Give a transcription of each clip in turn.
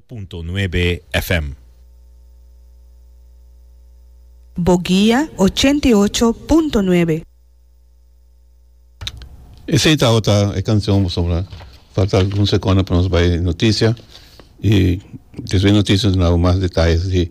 punto nuebe FM. Bo guia ochenta i ocho punto nuebe. Esey ta ota e cancion boso mira. Falta algun secondo pa nos bay noticia y despues noticia nos na habu mas detalles di.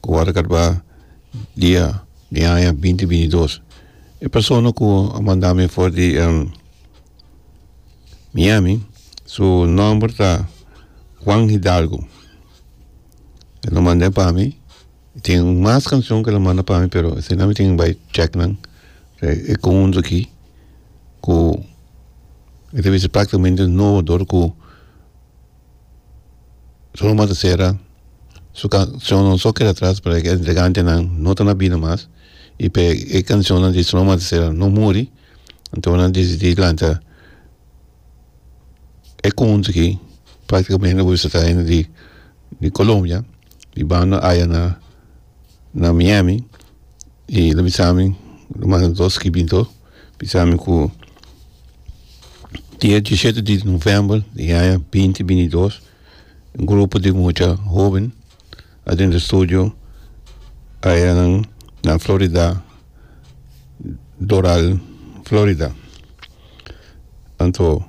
ku wòrdu katba dia di aña binti binti dos e persona ku a manda mi for di Miami su nòmber ta Juan Hidalgo e lo mand'e pa mi e tin mas kanshon ku e lo manda pa mi pero asina mi tin bai chèknan e kountu aki ku e ta bisa praktikamente nobo dor ku Su ruma ta sera, su cancionnan so keda atras pasobra e dregantenan no ta na bida mas y p'e e cancionnan di Su ruma ta sera no muri anto nan decidi lanta e conjunto aki practicamente lo bisa ta hende di Colombia y banda aya na na Miami y lo bisa mi lo manda dos kibinto bisa mi cu dia diesisiete di november di aña binti binti y dos un grupo di mucha hoben adentro e studio aya nan na Florida Doral Florida anto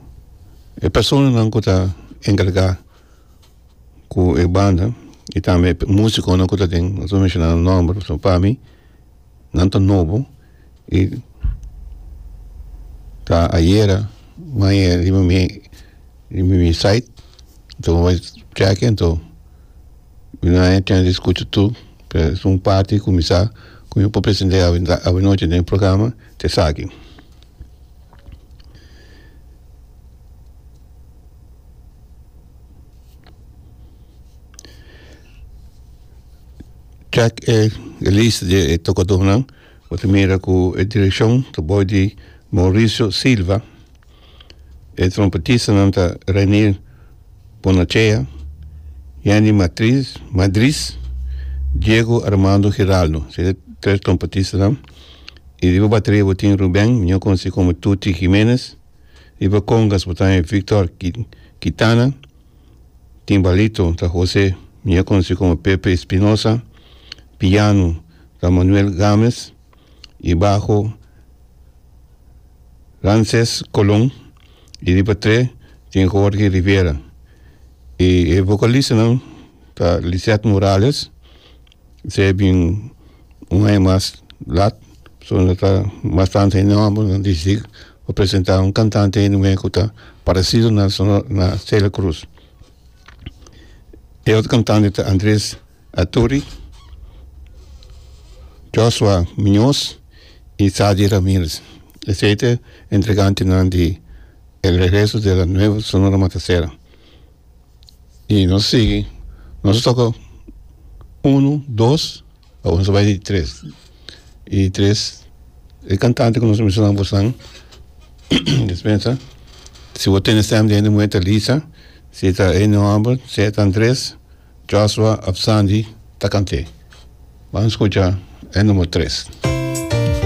e personanan cu ta encarga. ku e banda y tambe e musiconan ku ta den no ta menshoná nan nomber pasobra pa mi nan ta nobo y ta ayera maña riba mi riba mi site ta wak cheque nto mi na haña chance di skucha tur p'e es un parti ku mi sa ku mi por presente awanochi den e programa ta esaki Chèk e lista di e tokadónan. Bo ta mira ku e direkshon ta bou di Mauricio Silva. E trompetistanan ta Renier Bonachea, Yanni Matriz Madriz, Diego Armando Giraldo. Se ta e tres trompetistanan. I riba bateria bo tin Ruben, mió konosí komo Tuti Jiménez. Riba kongas bo ta e Victor Kitana, timbalito ta Jose mier konosí komo Pepe Espinosa, piano ta Manuel Games y baho Ramses Colon y riba tre tin Jorge Rivera y e vocalistanan ta Lisette Morales. Esei bin un aña mas lat so nan ta bastante enorme nan dicidic pa presenta un cantante hende cu ta parecido na na Celia Cruz e otro cantante ta Andres Athuri, Joshua Munoz y Sadie Ramirez esei ta entregante nan di el regreso de la nueva Sonora Matancera. y nos sigui nos toca uno dos awo nos ta bai di tres y di tres e cantante cu nos a mencionan bos nan dispensa si bo tene stem den di muhé ta Lisa si ta Ene homber si ta Andres Joshua of Sandy ta cant'e bam scucha e numero tres.